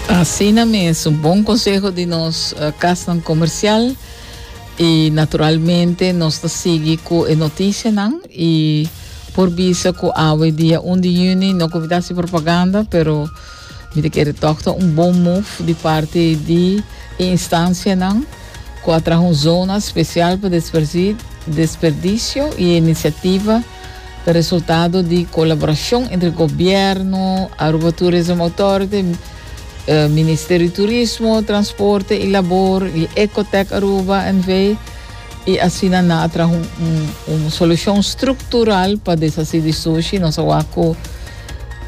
Asina mes, un bon conseho di nos uh, casnan comercial. Y naturalmente nos ta sigui cu e noticianan y por bisa cu awe dia 1 di juni no cubita si propaganda, pero mi te kere toch ta un bon move di parte di e instancianan cu a traha un zona special pa desperdi- desperdicio y e iniciativa Ta resultado di colaboracion entre gobierno, Aruba Tourism Authority, Ministerio di Turismo, Transporte y Labor y Ecotec Aruba NV. Y asina nan a traha un solucion structural pa deshaci di sushi. Nos a wak cu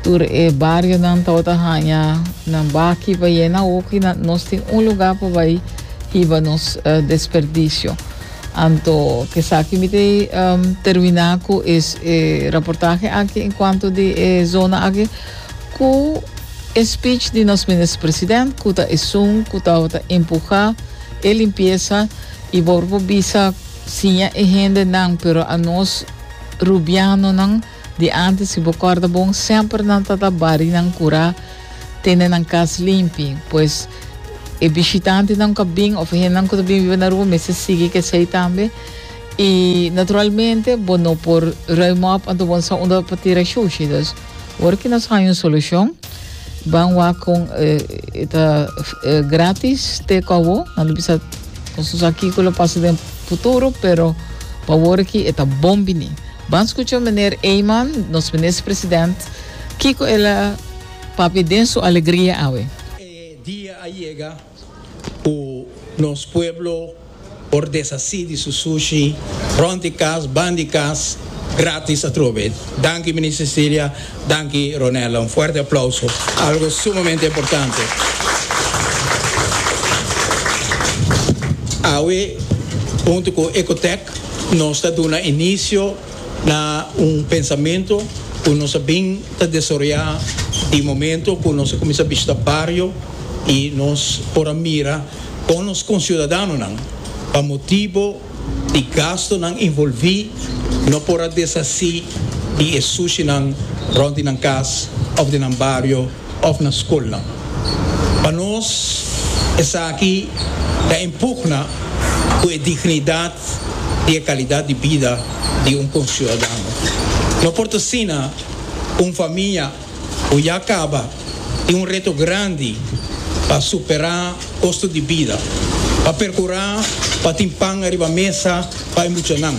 tur e barionan tabata haya nan baki pa yena hopi. Nos tin un lugar pa bay hiba nos desperdicio. Anto kesaki mi te termina ku e raportahe aki en kuanto di e zona aki ku e speech di nos minister president ku ta esun ku tabata empuha e limpiesa i por ku bisa siña e hendenan pero a nos rubianonan Di antes si bo corda bon semper nan ta ta barinan cura tene nan cas limpi pues e bishitantenan cu a bin of e hendenan cu ta bin biba na Aruba mester sigui kesey tambe y naturalmente bo no por ruim op anto bo no sa unda pa tira shushi dus ora ki nos haña un solucion ban wak con e ta gratis te cu awo nan lo bisa nos no sa kiko lo pasa den futuro pero pa wor aki e ta bon bini. Ban scucha Meneer Eman, nos Minister President, kico el a papia den su alegria awe. E dia a yega cu nos pueblo por deshaci di su sushi rond di cas, ban di cas, gratis atrobe. Danki Minister Cilia. Danki Ronella, un fuerte aplauso algo sumamente importante. Awe huntu cu Ecotec nos ta duna inicio na un pensamentu cu nos a bin ta desaroya di momento cu nos a cuminsa bishita bario y nos por a mira con nos conciudadanonan pa motibo Di gastonan involví no por a deshasí di e sushinan rònt di nan kas òf di nan bario òf na skolnan. Pa nos esaki ta impugna ku e dignidat di e kalidat di bida di un konsiudadano. No por ta asina un famia. Cu ya caba tin un reto grandi pa supera costo di bida, pa percura pa tin pan ariba mesa pa e muchanan,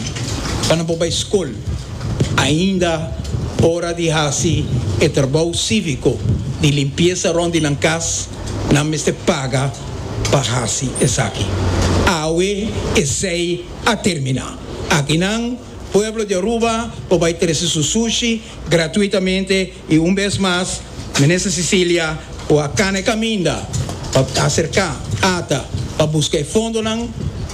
pa nan por bay scol. Ainda ora di haci e trabou civico di limpieza rond di nan cas, nan mester paga pa haci esaki. Awe esey a termina. Aki nan, pueblo di Aruba, por bay trece su sushi. gratuitamente y un bes mas Minister Cecilia cu a cana e caminda pa acerca ata pa busca e fondonan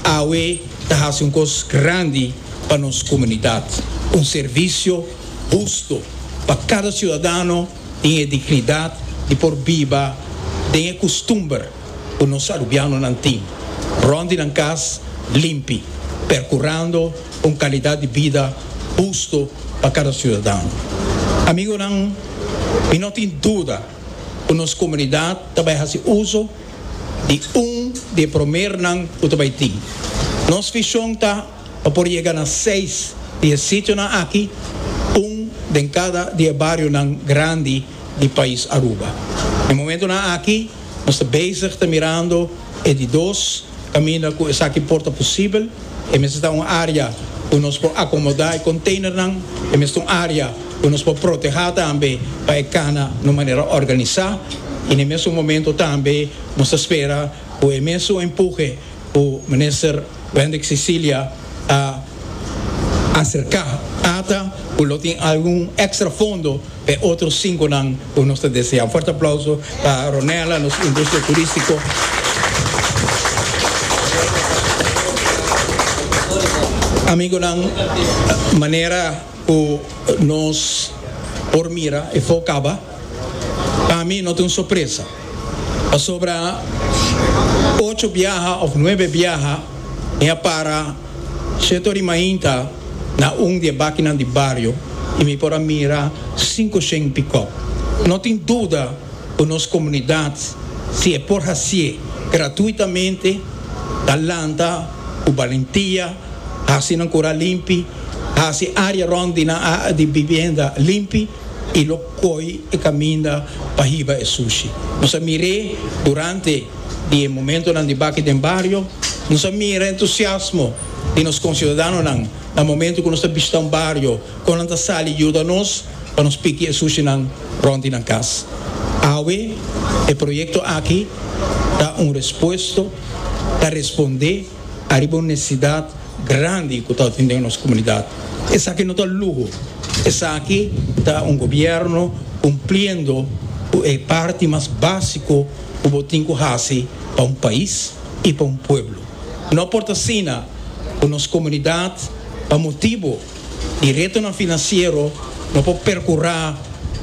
awe ta haci un cos grandi pa nos comunidad, un servicio husto pa cada ciudadano tin e dignidad di por biba den e custumber. ku nos arubianonan tin rònt di nan kas limpi, perkurando un kalidat di bida hustu pa kada siudadano. Amigonan, mi no tin duda ku nos komunidat ta bai hasi uso di un di e promernan ku ta bai tin. Nos vishon ta pa por yega na seis di e sitionan aki, un den kada di e barionan grandi di pais Aruba. Na e momentunan aki. Nos ta bezig ta mirando e di dos kaminda ku esaki por ta posibel. E mester ta un área ku nos por akomodá e konteinernan. E mester un área ku nos por protehá tambe pa e kana na un manera organisá. I na e mesun momento tambe nos ta spera ku e mesun empuhe Ku Minister Wendrick Cecilia a aserká ata ku lo tin algun extra fondo pa e otro sinkonan ku nos ta deseá. Un fuerte aplauso pa Ronella, nos industria turístiko. Amigonan, manera. ku nos por mira e fo kaba, pa mi no ta un sorpresa, pasobra ocho biaha òf nuebe biaha mi a para seto riba mainta na un di e bakinan di bario i mi por a mira sinku shen pikòp. No tin duda ku nos komunidat, si e por hasié gratuitamente, ta lanta ku balentia, hasi nan kura limpi, hasi área rònt di nan di bibienda limpi i lo koi e kaminda pa hiba e sushi. Nos a mir'é durante di e momentonan di bak'é den bario. Nos a mira e entusiasmo di nos konsiudadanonan na momentu ku nos ta bishita un bario, kon nan ta sali yuda nos pa nos piki e sushinan rònt di nan kas. Awe e proyekto aki ta un respuesto, ta respondé. Ariba un nesesidat grandi ku ta atendenan nos komunidat. Esaki no ta luho, esaki ta un gobièrnu kumpliendo ku e parti mas básiko ku bo tin ku hasi pa un pais i pa un pueblo. No por ta asina ku nos komunidat pa motibu di retonan finansiero no por perkurá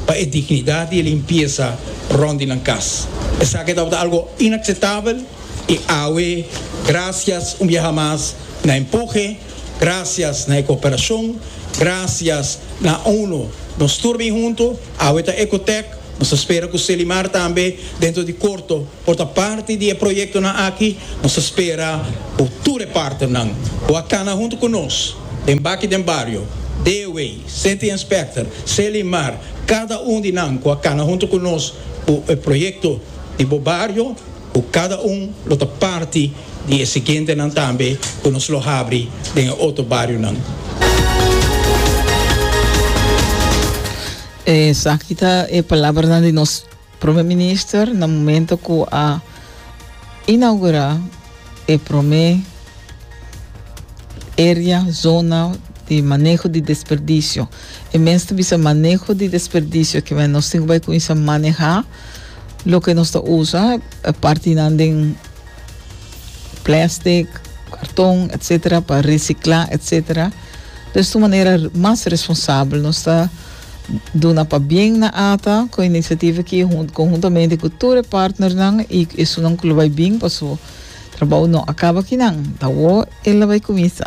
pa e dignidat i e limpiesa rònt di nan kas. Esaki tabata algu inakseptabel. I awe, grasias un biaha mas na e mpuje, grasias na e kooperashon, grasias na UNO, nos tur bin huntu, awe ta Ecotec, nos ta spera ku Selimar tambe dentro di korto por ta parti di e proyektonan aki, nos ta spera ku tur e partenan ku a kana huntu ku nos den Baki den Bario, Dewey, City Inspector, Selimar, kada un di nan ku a kana huntu ku nos ku e proyekto di bo bario, ku kada un lo ta parti di e siguientenan tambe ku nos lo habri den e otro barionan. Esaki ta e palabranan di nos Prome Minister na momento ku a inaugura e prome area, zona, di maneho di desperdisio. E mens ta bisa maneho di desperdisio, kimen nos tin ku bai kuminsa maneha. loke nos ta usa e partinan den plèstik, karton etcetera pa resiklá etcetera des tu manera mas responsabel nos ta duna pa bien na ata kon inisiativa aki konhuntamente ku tur e partnernan i esunnan ku lo bai bin paso trabou no a kaba aki nan ta awor el a bai kuminsa.